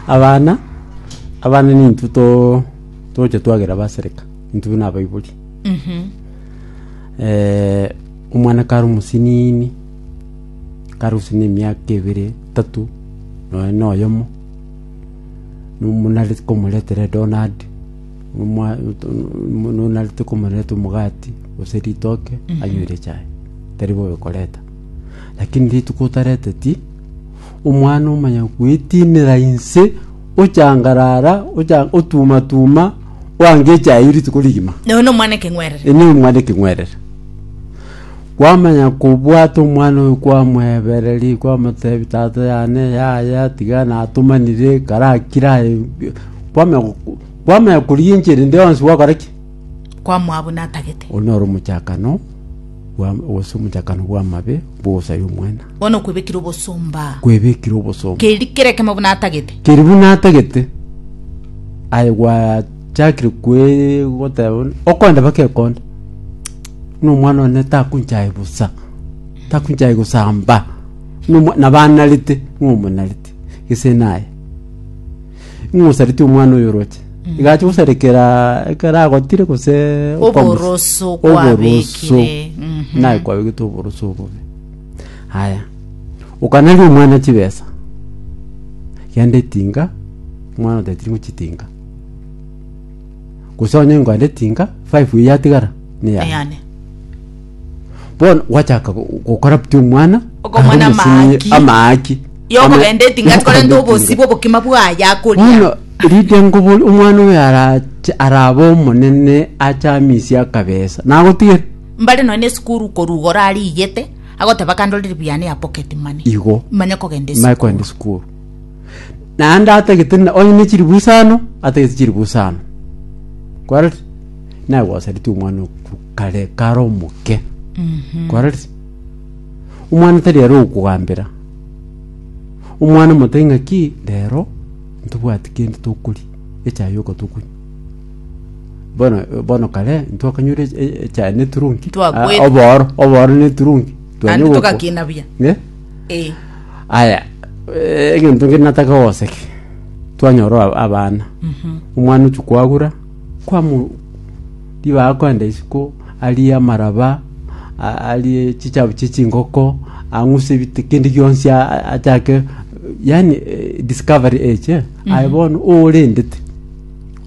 Abana, abana nintwe to- togocha twagera basereka, intwe buna abaibori. Eh, omwana kare omosinini, kare gose na emiaka ebere, etato, nonya na oyomo, nomo nareti komoretera edonati, omwa- to- no- no- narete komoreta omogati gose ritoke anywere echae, tari bobe koreta. Lakini rituko otareteti. Omwana omonyene gwetiinera inse, ochangarara, ocha- otumatuma, oanga echaye rituko rigima. Noyo nomwana ekeng'werere. Ene omwana ekeng'werere. Kwamanya kobwata omwana oyo kwamwebereria kwamotebi tata yane yaya tiga natomanire karakire aye kwamenya kwamenya korigia enchera ende yonsi gwakora ki? kwamwabo natagete. Oyio noro omochakano bwa, gose omochakano bw'amabe bw'ogosaria omwana. Bono okwebekire obosomba. Kwebekire obosomba. Keri kere kemo buna atagete. Keri buna atagete. Aye gwachakire kwe goteba bono, okonde bake ekonde. No mwana one takunchaye busa. Takunchaye gosamba. No mwa- nabanarete, no omonarete. Gese naye. Ing'osaretie omwana oyoroche. Igacha gosarekera ekero agotire gose Oboroso kwabekire. Mhm. naye kwabegete oboroso obobe haya okanaria omwana chibesa genda etinga omwana otatiri ng'o chitinga gose onye ngwende tinka five eye yatigara neyane Eyane. bono gwachaka go- gocorrupt omwana Okomwana arore omosinyi amaaki. amaaki Yokogenda etinga tikorenta obosi bw'obokima bwaye akoria. bono rinde ngobo omwana oyo arache arabe omonene ache amisie akabesa nagotigere Mbare nonya esukuru korugora arigete, agoteba kandorere buya ne ya pocket money. igo Manye kogenda esukuru. maye kogenda esukuru Naende atagete na- onye ne chilifu isano, atagete chilifu isano. Kwarorire? Naye gwasaretie omwana oku kare kare omoke. Kwarorire? Omwana tari ere okogambera. Omwana omotebie ng'aki, rero ntobwati kende tokoria, echae yoka tokonywa. Bono bono kare ntwakanyure e- e- echae ne eturungi. Twakwete. Ah, obooro, obooro ne eturungi. Twanywa Naende ogoko- togakina buya. Eh? Ee. Aya, eh, egento kende natake gogoseke, twanyora aba- abana omwana ochia kwagura kwamu ribaga kwenda isiko arie amaraba a- arie chichabu chie chingoko ang'use ebite kende gionsi a- a- achake yani eh, discovery age eh, aye bono orendete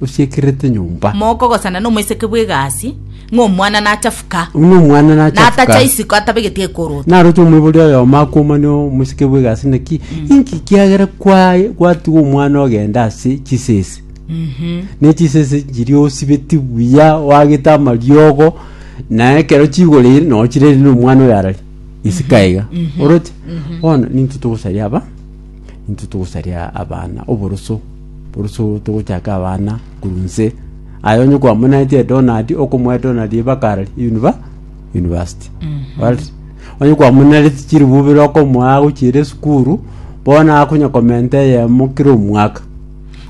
osiekerete nyomba. Mokogosana nomoiseke bw'egasi, ng'a omwana nachafuka, Ng'a omwana nachafuka. natacha isiko atabegeti ekorota. Naroche omoibori oyomo akomanie omoiseke bw'egasi naki, inki kiagera kwaye gwatiga omwana ogenda ase chisese? Ne chisese chiria osibeti buya, oagete amariogo, na ekero chigoreire na ochireire nomwana oyo arari isiko aiga. Oroche? Bono ninki togosaria aba? intwe togosaria abana oboroso boroso togochaka abana korwa nse aye onye kwamonaetie donald okomoa donald ebakara univa university Alright? onye kwamonareti chiribubere okomoa agochiere esukuru bono akonya komenta eyemo kera omwaka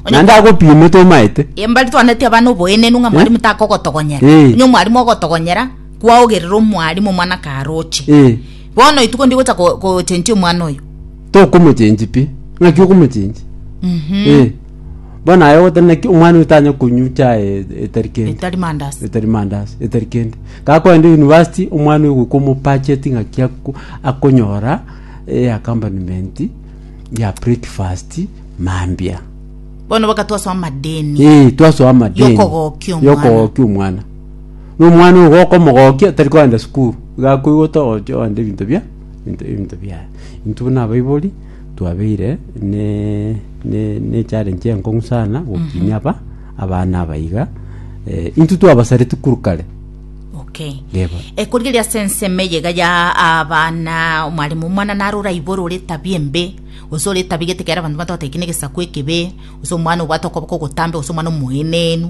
Onye- naende agopime tomaete embari twaneti abana oboenenu ng'a mwarimu takogotogonyera Eh. onye omwarimu ogotogonyera kwaogerera omwarimu omwana karoche Eh. Bono rituko ndigocha ko- kochenchia omwana oyo. Tokomochenchi pi. Ng'aki okomochenchi? Mhm. Eh. Bono aye ogoteba naki omwana oyo tanya konywa chae e- etari kende. Etari mandasi. etari mandasi etari kende gakogenda university omwana oyo goika omopacheti ng'aki ako- akonyora eh, accompaniment ya breakfast mambia Bono baka twasoa amadeni. Eh, twasoa amadeni Yokogokia omwana. yokogokia omwana Na omwana oyo gokomogokia tari kogenda sukuru, iga akoigota ogocha ogenda ebinto bia ebinto ebinto biaye. Intwe buna abaibori twabeire ne ne ne echallenge enkong'u sana gokinia aba abana aba iga, eh, intwe twabasareti korwa kare. Okay. Yebo. ekorigereria ase ensemo eye iga ya abana omwalimu omwana naro oraibore ore etabia embe gose ore etabia gete ekero abanto batogoteba eki negesaku ekebe gose omwana obwate okoboko ogotambe gose omwana omoenenu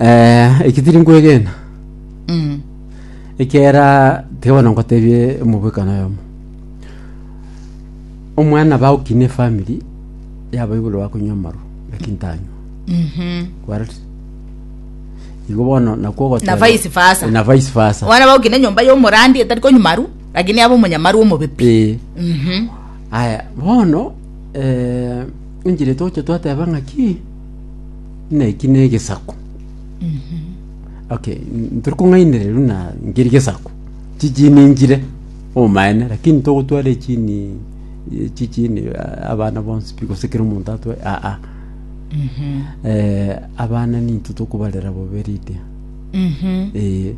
Eh, eki tiri nkwegena Mm. ekera tiga bono nkotebie omobwekano oyomo omwana baokina efamiri yaba igoro bakonywa amaru lakini tanywa Mhm. kwaret igo bono nakwo ogoteba- Na vice versa. Eh, na vice versa Wana baukine nyomba ya omorandi etari konywa maru, lakini aba omonyamaru omobepi. Eh, Mhm. aya bono eh, enchera etoche twateba ng'aki Buna eki negesaku. Okay, n- ntiri kong'ainereria buna nkeri gesaku. Chichini nchire omaene lakini togotwara echini eh, chichini ah, abana bonsi pi gose kera omonto atwae ah ah. Eh, abana ninto tokobarera bobe Lydia. Eh,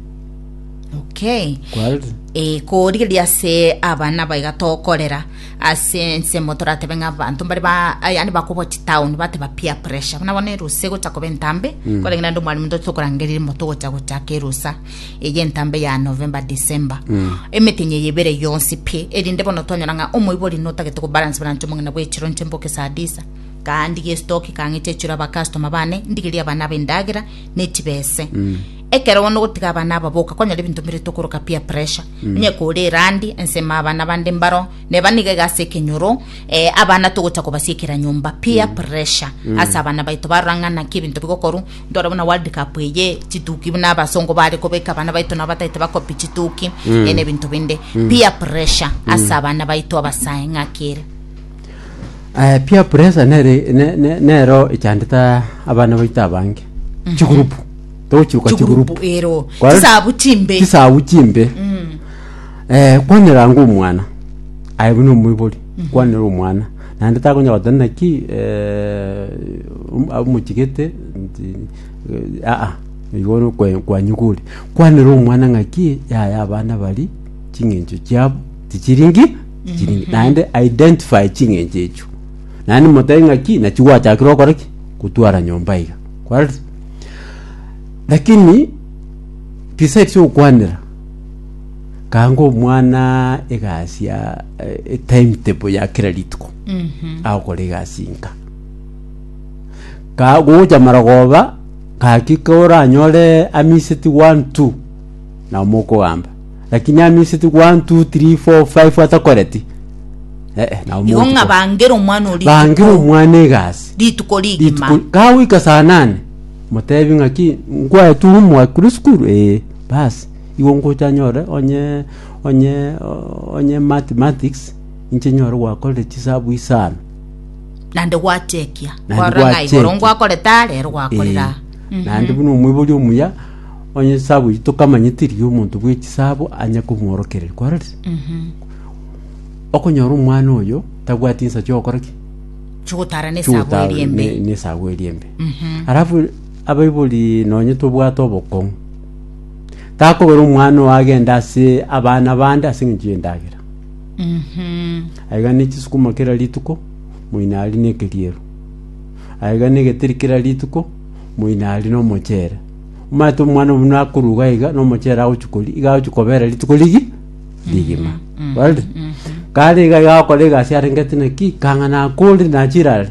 okay kware e korigeria ase abana baiga tokorera Ase ensemo toratebe ng'a abanto mbare ba ah, yaani bakobwa chitown bateba peer pressure buna bono erusa egocha koba entambe korenge naende omwarimu ntwe tokorangeria mo togocha gochaka erusa eye entambe ya november december emetenyi eye ebere yonsi pi erinde bono twanyora ng'a omoibori notagete kobalance balance omong'ina bwa echiro nche mboke saa disa kandige estoki kang'eche echiro abakastoma bane ndigerie abana abe endagera nechibese Ekero bono ogotiga abana aba boka konyora ebinto mbirito okoroka peer pressure mm. onye kore erandi ensema abana bande mbaro neba niga iga ase ekenyoro eh, abana togocha kobasiekera nyomba peer mm. pressure mm. ase abana baito barora ng'ana ki ebinto bigokoru ndore buna world cup eye chituki buna abasongo bare kobeka abana baito nabo bataete bakopi chituki mm. ene ebinto binde mm. peer pressure mm. ase abana baito abasae ng'akere Eh, peer pressure nere ne- ne- nero echandete abana baito abange chigurupu togochiruka chigurupu chigurupu ero Kwa- chisabu chimbe chisabu chimbe eh, kwaneranga omwana aye buna omoibori kwanera omwana naende takonya goteba naki eh, om- amochigete nti eh, aa igo no kwe- kwanyiguri kwanera omwana ng'aki yaya abana bari ching'encho chiabo tichiringi chiringi naende identify ching'encho echio naende motebi ng'aki nachi gwachakire okore ki gotwara nyomba iga kwareti lakini beside ase ogokwanera kanga omwana egasi ya eh, time table ya kera rituko agokora egasi nka ka gochamara goba gaki koranyore amiseti one two nabo mokogamba. Lakini amiseti one, two, three, four, five atakoreti. Eh, eh, nabo igo motuko. ng'a bangere omwana ori Bangire omwana egasi. rituko rigima Rituko kagoika saa nane motebi ng'aki nkwaye tu homework kuri sukuru eh basi igo ngocha nyore onye onye o- onye mathematics inche nyore gwakorire chisabu isano nande gwachekia Nande gwarora ng'a igoro gwachekia. ngwakoreta rero gwakorera Eh, naende buna omoibori omuya Onye chisaabo echio tokamanya teri omonto bwe chisaabo anya komworokereria kwarorire okonyora omwana oyo tabwati ensa chiokora ki chigotara ne sabo chiotara eri embe ne- nesaabo eri embe alafu abaibori nonye tobwate obokong'u takobera omwana oyo agende ase abana bande ase eng'encho y'endagera Mhm. aiga ne chisukuma kera rituko moino aria na ekeriero aiga na egeteri kera rituko moino aria na omochere Omanyete Omwana-o-Omonene akoruga iga nomochero agochia koria, iga agochia kobera rituko rigi rigima. Barire? Kare iga iga agokora egasi arengeti naki, kang'ana akore nachire are,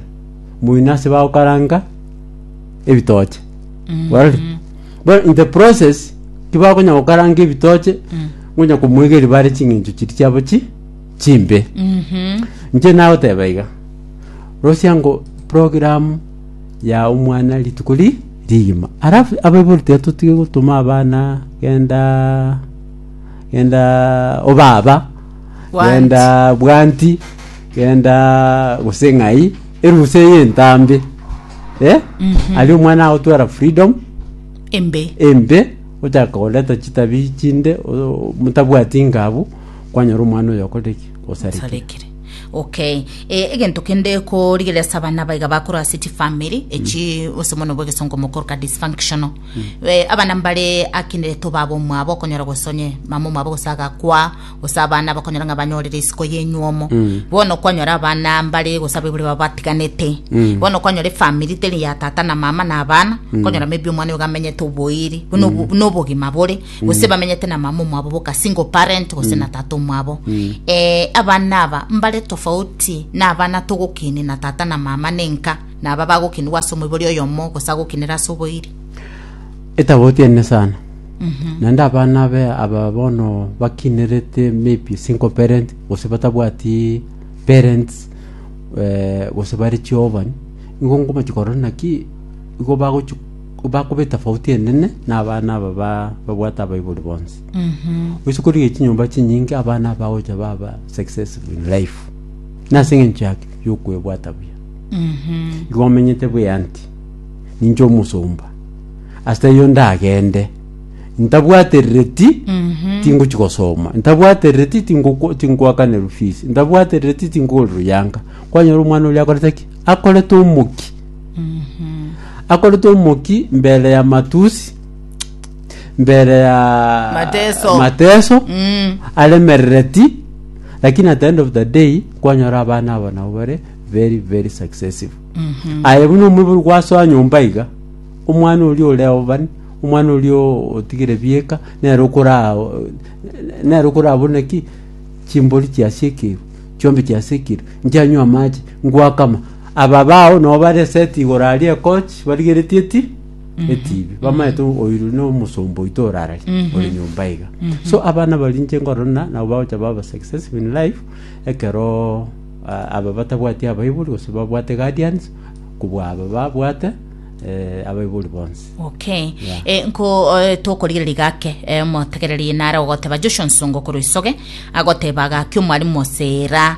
moino ase bagokaranga ebitoche. Barire? Bono in the process, tibakonya gokaranga ebitoche, ngonya komoigeria bare ching'encho chiria chiabo chi chimbe. Inche nagoteba iga, rosiango program ya omwana rituko ri rigima alafu abaibori tiatotige gotoma abana genda genda obaba Bwanti. genda bwanti genda gose ng'ai erusa eye entambe eh? ari omwana agotwara freedom embe embe ochaka koreta chitabi chinde o- motabwati ngabu kwanyora omwana oyo okorire ki osarekire osarekire Okay, eh, egento kende korigereria ase abana abaiga bakoro ase chifamiri echi ose mono bwa egesongo mokoruka dysfunctional Eh, abana mbare akindereto baba omwabo okonyora gose onye mama omwabo gose agakwa gose abana bakonyora ng'a banyorire isiko yenyuomo bono kwanyora abana mbare gose abaibori baba batiganete bono kwanyora efamiri teri ya tata na mama na abana konyora maybe omwana oyo gamenyete oboiri buna obo- buna obogima bore gose bamenyete na mama omwabo boka single parent gose na tata omwabo eh, abana aba mbare tofauti na abana togokini na tata na mama nenka na aba bagokinigwa ase omoibori oyomo gose agokinera ase oboiri etaboti ene sana naende abana be aba bono bakinerete maybe single parent gose batabwati parents eh, gose bari chiovan igo ngomachi korora naki igo bagochi Bakoba etafauti enene nabana aba babwate abaibori bonsi. Gochia korigia chinyomba chinyinge abana aba bagocha baba successful in life. Nase eng'encho yaki yokwebwata buya. Igo omenyete buya nti ninche omosomba. Ase taiyo ndagende ntabwaterereti tingochia gosoma, ntabwaterereti tingoko- tingoakanirwa fees, ntabwaterereti tingokora ruyanka. Kwanyora omwana oria akorete ki? Akorete omokia. Akorete omoki mbere ya matusi, mbere ya Mateso. mateso Mm. aremerereti lakini at the end of the day kwanyora abana abo nabo bare very very successful aye buna omobiri gwasoa nyomba iga omwana oria ore obani omwana oria o- otigire bieka nere okora nere okora buna ki chimbori chiasie ekeru chiombe chiasie ekeru nchianywa amache ngwakama Aba bao nabo bare eseti igoro aria ekochi barigeretie eti etibi bamaete oiru na omosomba oito orarari ore nyomba iga so abana baria inche nkorora nabo bagocha baba successful in life ekero ah, aba batabwati abaibori gose babwate guardians kobua aba babwate eh, abaibori bonsi okay Yeah. Eh, nko eh, tokorigereria gake eh, omotegereri nare ogoteba joshua nsongo korwa isoge agoteba gaki omwarimu osera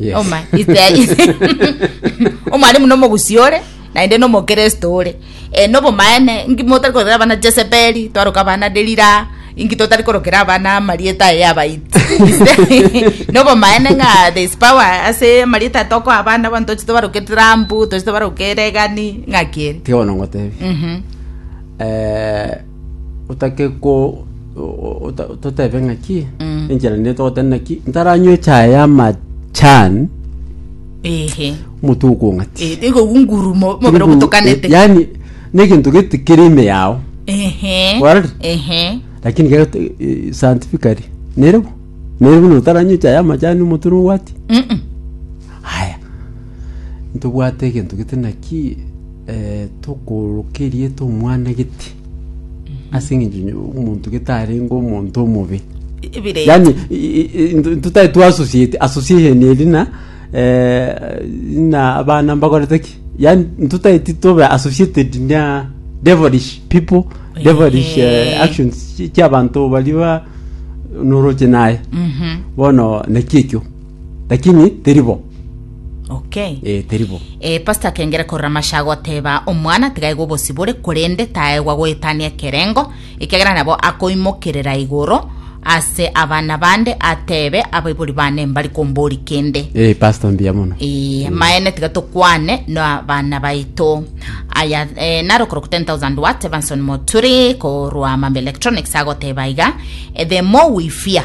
Yes. Oma, ite- omwalimu nomogusi ore naende nomokristo ore e, nobomaene ingi motari korokera abana jesebeli twaroka abana delira ingi totari korokera abana amarieta aye abaiti nobomaene ng'a there is power ase amarieta tokoa abana abanto tochi tobaroke trambu tochi tobaroke regani ng'a kere tiga bono ngotebi Mhm. eh, otake ko totebe ng'aki enchera nene togoteba naki ntaranywa echae y'amachani ehe omonto okong'ati Eh, igo gungurumo mobere ogotokanete yani negento gete kere ime yao ehe Kwari? ehe lakini kero te- eh, scientifically nerebo nerebo notaranywa echae y'amachani omonto nobwati Mm-mm. haya Ntobwate egento gete naki eh, tokooroka erieta omwana gete ase eng'encho onye- omonto gete arenge omonto omobe Ebire. yani totari twasosiete association eri na eh, na abana mbakorete ki yani totari titobe associated na devilish people devilish eh, Ehe. actions chi- chiabanto bari ba noroche naye Mhm. bono naki ekio Lakini teri bo. Okay. Eh, teri bo. Eh, pastor akengera korora amasha agoteba omwana tigaigwa obosibore korende taegwa goetania ekerengo ekegera nabo akoimokerera igoro ase abana bande atebe abaibori bane mbari kombori kende Eh, pastor mbuya mono. Ee, maene tiga tokwane na bana baito aya e, naro koroko 10000 watt evanson moturi korwa mambe electronics agoteba iga e, the more we fear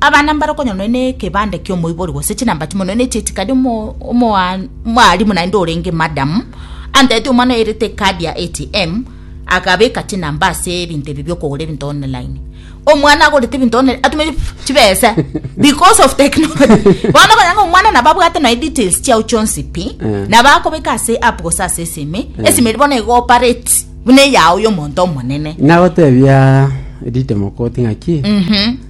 Abana mbarokonywa nonya nekebande kiomoibori gose chinamba chimo nonya necheti kadi omwalimu naende orenge madam antebetie omwana oerete ekadi ya ATM akabeka chinamba ase ebinto ebi biokogora ebinto online omwana agorete ebinto online atumete chibesa because of technology bono okonyora ng'a omwana nabo abwate nonya details chiao chionsi pi eh. nabo akobeka ase app gose ase esime eh. esime eri bono egoparate buna eyao yomonto omonene nagotebia ritemokoti ng'aki mm -hmm.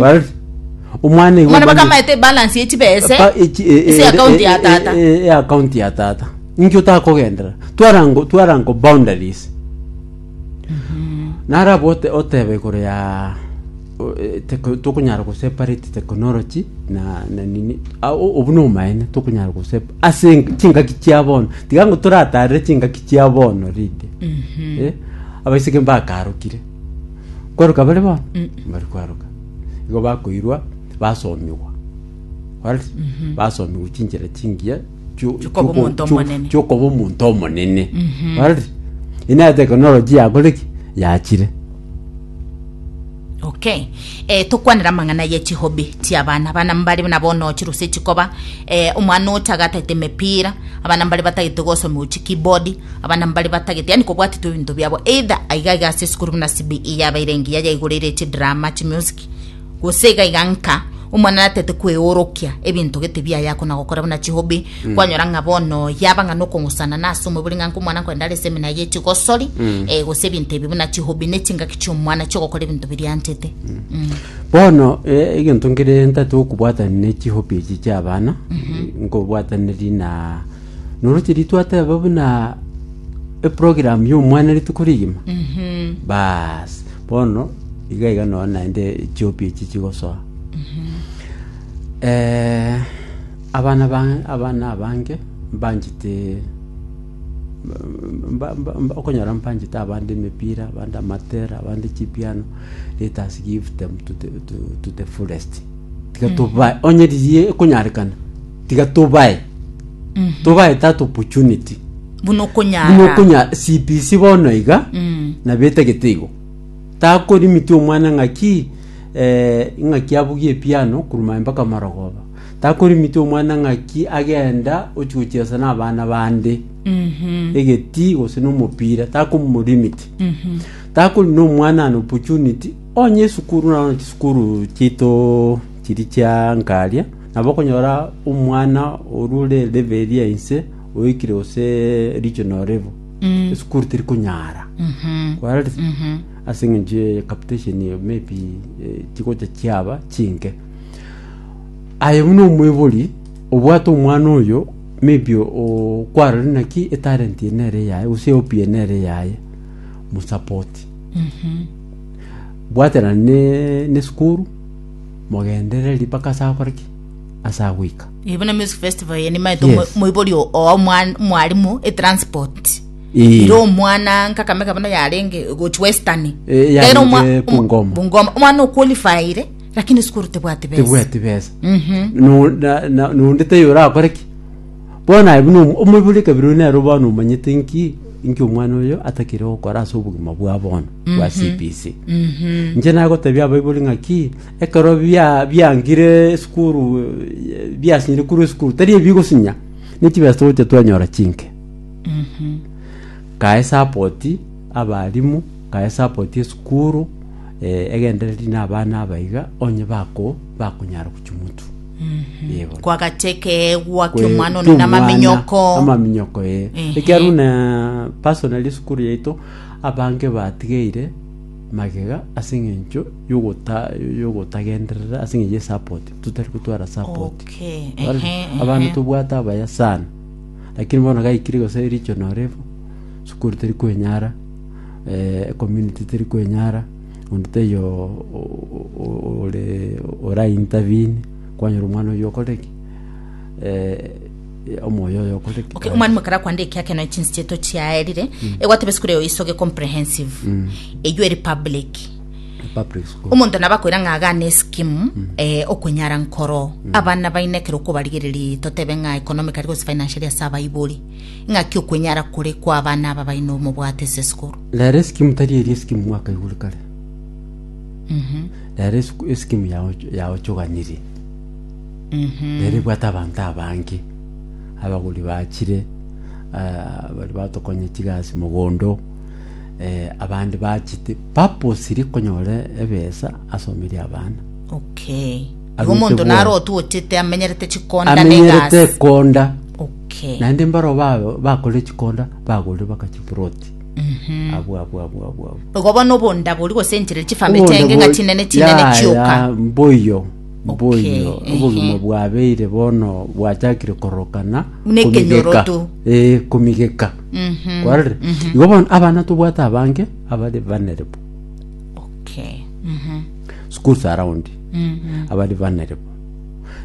Well, omwana igo Omwana baka obani- amaete balance ye chibese. Pa- echi- e- e- Ase e- account e- ya e- tata. e- e- account ya tata inki otakogendera twarango twarango boundaries narabo ote- otebe igoro ya o- e- teko- tokonyara goseparate technology na na nini Ah, o- obwo nomaene tokonyara gosep ase eng- chingaki chia bono tiga ngo toratarire chingaki chia bono rinde Eh, abaiseke mbakarokire Kwaruka bare bono? Mbari kwaruka. Igo bakoirwa basomigwa. Alright? Basomigwa chinchera chingiya chio- Chiokoba chioko- omonto chio- omonene. chiokoba omonto omonene. Alright? Ina technology yakoreki yachire. okay E, tokwanera amang'ana ye chihobi chi'abana, abana mbare nabo ono chiruse chikoba, e, omwana ocha agatagete emepira, abana mbare batagete gosomewa chi keyboard, abana mbare batagete yani kobwatitwe ebinto biabo either aiga iga ase esukuru buna CBE yabeire engiya yaigoreire chidrama, chimusic, gose iga iga nka omwana natete kweorokia ebinto gete biaye akona gokora buna chihobi, Kwanyora ng'a bono yaba ng'a nokong'usana nase omobere ng'a nkomwana nkogenda are esemina ye chigosori eh, gose ebinto ebi buna chihobi ne chingaki chi'omwana chi'ogokora ebinto biria anchete Mm. Bono eh, egento nkere ntati okobwatani ne chihopi echi chi'abana nkobwataneri na noroche ritwateba buna eprogram y'omwana rituko rigima Mhm. bas bono iga iga nonya naende chihopi echi chigosoa Eh, Abana baye abana abange mbanchete okonyora mbanchete abande emepira, abande amatera, abande chipiano, let us give them to the, to, to the fullest. Tiga tobae, onye riria ekonyarekana, tiga tobae, tobae that opportunity. buna Buna okonyara okonya CPC bono iga Mm. na betagete igo takorimiti omwana ng'aki eh, ng'aki abugie epiano kuruma mpaka marogoba Takorimiti omwana ng'aki agenda ochia gochiesa n'abana bande egeti gose n'omopira takomorimiti takori n'omwana an opportunity onye esukuru naro chisukuru chiaito chiri chia nkaria nabo okonyora omwana oria ore level eri ya inse oikire gose regional level esukuru teri konyara kwarorire ase eng'encho ya capitation maybe eh, chigocha chiaba chinke Aye buna omoibori obwate omwana oyo, maybe okwarorire naki etalent eye nere eyaye gose ehope eye nere eyaye, mosupport. Bwatera ne nesukuru, mogenderere riria mpaka ase akore ki? Ase agoika. Eh, buna music festival eye nimaete Yes. omo- moibori o- oa omwan- mwarimu etransport Ee. ire omwana nkakamega buna yarenge gochi western Eh, yarenge Gaira omwa- omo- Bungoma. bungoma omwana oqualifyire Lakini sikuru tebwati besa. tebwati besa No- na- na- nonde taiyo orakore ki bono aye buna omo- omoibori kabere oyo nero bono omanyete nki nki omwana oyo atakire gokora ase obogima bwa bono bwa cbc inche nagotebia abaibori ng'aki ekero bia- biangire esukuru eh, biasinyire korwa esukuru tari ebi bigosinya nechibesa togocha twanyora chinke kae sapoti abarimu kae sapoti esukuru Egendereri rinde abana aba iga onye bako, bakonyara gochia omotu. Ee, bono. Kwagacha ekeegwa ki'omwana one na amaminyoko. amaminyoko ee Ehe. ekiaro na personal esukuru yaito abange batigeire magega ase eng'encho yogota yogotagenderera ase eng'encho ye support totari gotwara support Okay, Wari- ehe, abana ehe. tobwate abaya sana lakini bono gaikire gose regional level sukuru teri kwenyara ecommunity teri kwenyara, onde taiyo ore ora intervene, kwanyora omwana oyio okore ki? omoyo oyo okore ki? Okay, omwarimu ekero akwande ekiake nonya chinsi chiaito chiaerire egwateba esukuru eye oisoge comprehensive eywo eri public Public school. omonto nabo akoira ng'a agane eskimu eh, okwenyara nkoro abana baino ekero okobarigereria totebe ng'a economically gose financially ase abaibori Ng'aki okwenyara kore kw'abana aba baino omobwate ase esukuru? Rero esikimu tari eri esikimu mwakaigure kare. Rero esiku- esikimu yaoch- yaochoganirie. Rero ebwate abanto abange. Abagori bachire, ah, bari batokonya chigasi mogondo, eh, abande bachete purposely konyora ebesa asomerie abana. Okay. Igo omonto naro otochete amenyerete chikonda na amenyerete egasi. ekonda Okay. naende mbaro ba- bakorire chikonda bagorire baka chiproti abwo abwo abwo abwo abwo Igo bono obonda bori gose enchera chifamiri Obondo chenge ng'a bo- chinene chinene ya, chioka. ya, mboyo mboyo Okay, obogima ehe. bwabeire bono bwachakire korokana Buna ekenyoroto. eh komigeka Mhm. kwarire igo bono abana tobwate abange abare banerebo Okay. Mhm. schools around abari banere bo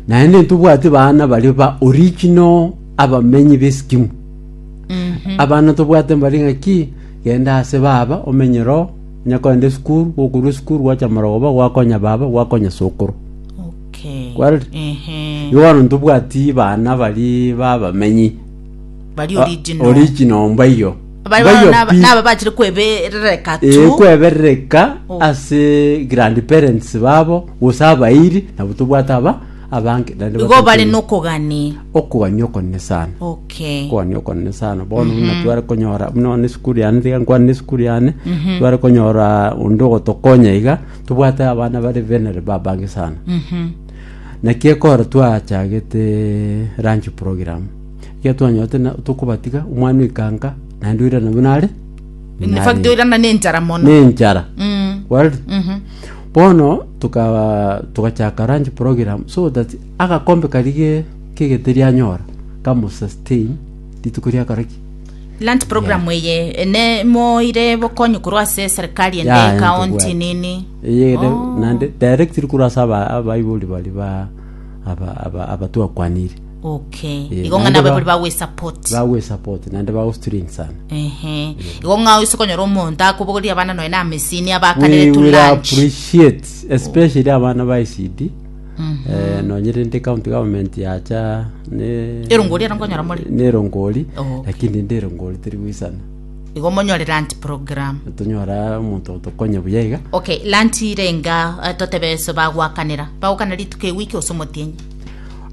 naende ntobwati baana bari ba original abamenyi b'esikimu abana tobwate mbari ng'aki genda ase baba omenye roho nyakogenda esukuru gokorwa esukuru gwacha marogoba gwakonya baba gwakonya sokoro Okay. Kwarire? Ehe. igo bono ntobwati baana bari babamenyi Bari Ah, original. original mbaiyo Bari Mbaiyo bono naba- pi- naba bachire kweberereka eh, tu kweberereka Oh. ase grandparents babo gose abairi nabo tobwate aba abange naende igo bari batokire. nokogani okogania okonene sana okay okogania okonene sana bono buna tware konyora buna one esukuru yane tiga nkwane na esukuru yane tware konyora onde ogotokonya iga tobwate abana bare benere babange sana Mhm. Naki ekero twachagete lunch program, ekiagera twanyorete na tokobatiga omwana oikanka naende oirana buna are In buna fact, are. oirana na enchara mono nenchara Mm. well Mhm. bono tuka togachaka lunch program so that agakombe karia ge- kegeteri anyora kamosustain rituko riakaraki Land program eye eh, ne moire bokonyi korwa ase serikali ende Yaya, county ntobwate. nini Eye de- Oh. nande directly korwa ase aba- abaibori bari ba aba- aba- abatwakwanire okay Eh, igo ng'a naende nabo ba- bari bagwesupport bagwesupport naende bagostring sana ehe igo ng'a oise konyora omonto akobogoria abana noe na amesini abakanire we to will lunch appreciate especially abana ba icd Eh, nonye rende county government yacha ne Erongori ero nkonyora more. nerongori Oh. lakini rende erongori teri goisana igo monyore land program tonyora omonto otokonya buya iga okay land irenga eh, totebe so bagwakanera bagokana rituko ewiki ose omotienyi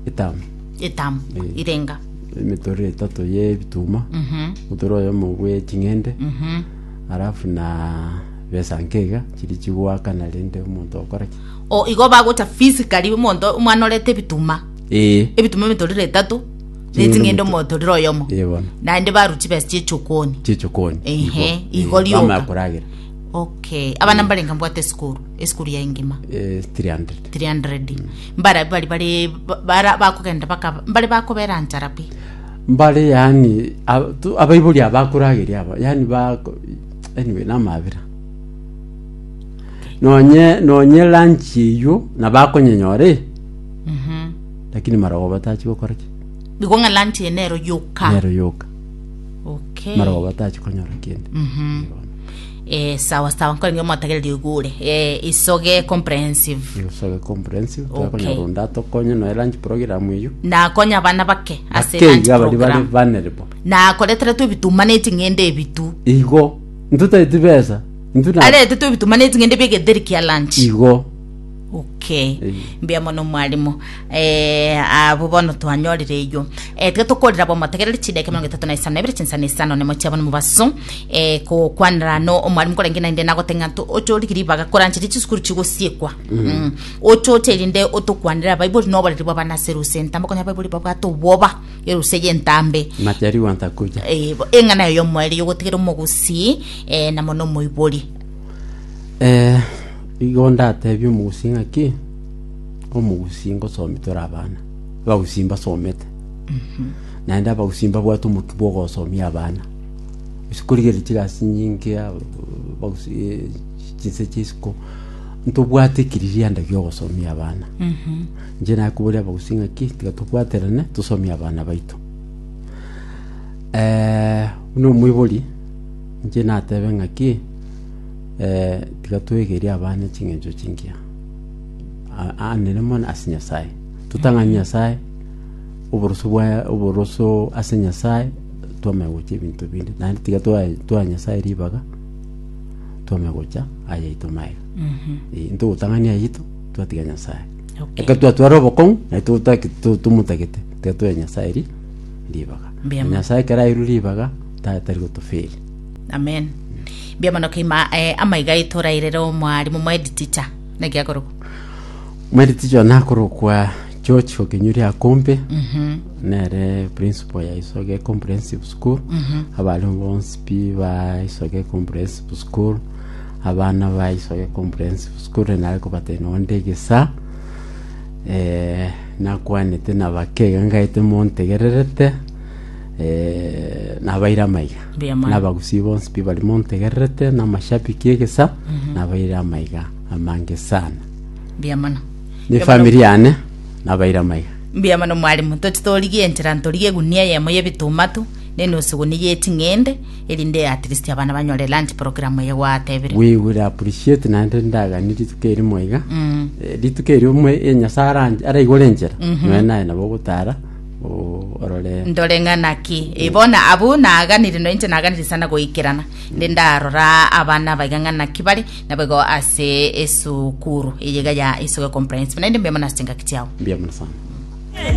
etamu etamu Eh. irenga emetoro etato ye ebituma Mhm, motoro oyo omo bwe ching'ende mhm. halafu na besa nkeiga chiri chigwakana rende omonto okora ki O, igo bagocha physically omonto omwana orete ebituma. Ee. Ebituma emetorire etato, Ching'ende n'eching'ende omoto- omotorire oyomo. Ee, bono. Naende baru chibesa chi'echokoni. Chichokoni. Ehe, igo rioka. Bamaya koragera. Okay. Abana mbarenga mbwate esukuru, esukuru yaye ngima. Eh, 300. 300 mbara bari bari bara bakogenda baka mbari bakobera nchara pi mbare yani ab- tu- abaibori abakorageria aba yani bako anyway namabera Nonye nonye eranchi eyio nabakonyenyora eh, lakini marogo batachi gokora ki? Igo ng'a lunch eye nero yoka. Nero yoka. Okay. Marogo batachi konyora kende. Mhm. Eh, sawa sawa nkore ngio motagereria igure. Eh, isoge comprehensive. Isoge comprehensive Okay. takonyora onde atokonye noe lunch program eyio. Nakonya abana bake ase Ake lunch iga bari bari program. vulnerable. Nakoretera tu ebitu mane ching'ende ebitu. Igo ntotaeti besa Intwe na- Arete tobitumane chingende bie geteri kia lunch. Igo. Okay. Eh. Mbuya mono mwalimu. Eh, abo bono twanyorire eyo. Eh, tiga tokorera bo motegereri chideke miongo etato na isano ebere chinsana isano ne mochia bono mobaso. Eh, ko kwanera no omwalimu korenge na inde nagote ng'anto ochori kiribaga koranchiri chisukuru chigosiekwa. Mm. Ochoche rinde otokwanera Bible no oboreri bwa bana serusi. Ntambo konya Bible babwate obwoba. Erusa eye entambe. Majaliwa ntakuja. Eh, bo- eng'ana eyo y'omoerio yogotigera omogusii eh, namo nomoibori. Eh, igo ndatebia omogusi ng'aki omogusi ngosomi tore abana abagusi mbasomete naende abagusi mbabwate omotu bwa ogosomia abana gose korigereria chigasi nyinge ab- abagusi eh, chinse chia isiko ntobwate ekiririanda gia ogosomia abana Inche nakoboria abagusii ng'aki, tiga tobwaterane, tosomie abana baito. Eh, buna omoibori, inche natebe ng'aki, eh, tiga twegerie abana ching'encho chingiya, a- a- anene mono ase Nyasaye. Totang'ani Nyasaye, oboroso bwaye, oboroso ase Nyasaye, twamanya gochia ebinto binde. Naende tiga twae- twaa Nyasaye ribaga, twamanya gocha ayaito maega. Eh, intwe gotang'ani ayito, twatiga Nyasaye. Okay. Ekero twatwara obokong'u naye totaki- to- tomotagete tiga toe nyasae ri- ribaga Mbuya mono. nyasae ekero airwe ribaga ta- tari gotoferi amen mbuya mono keima eh, amaiga aito orairere omwarimu moedi ticha naki akorokwa mweri ticho nakorokwa george okenyuri akombe Mhm, nere principal ya isoge comprehensive school mhm. abare bonsi pi ba isoge comprehensive school Abana ba Isoge Comprehensive School nare kobatebia onde egesaa eh, nakwanete nabake iga ngaete montegererete eh, nabaire amaiga Mbuya mono. nabagusii bonsi pi bari montegererete namashabiki egesa nabaire amaiga amange sana mbuya mono ni famiri yane nabaire amaiga mbuya mono mwalimu tochi torigie enchera ntorigie egunia eyemo y'ebitumatu nenusu egunia y'eching'ende erinde at least abana banyore lunch program eye gwatebire. We will appreciate naende ndagani rituko eri moiga Mm. Eh, rituko eri omwe eh, nyasae aranche- araigore enchera noe naye nabo ogotara o- orore ndore ng'a naki Eh, bona abu naganire no inche naganire sana goikerana nde ndarora abana baiga ng'a naki bare naboigo ase esukuru eyega ya isoge comprehensive naende mbemo nase chingaki chiao mbuya mono sana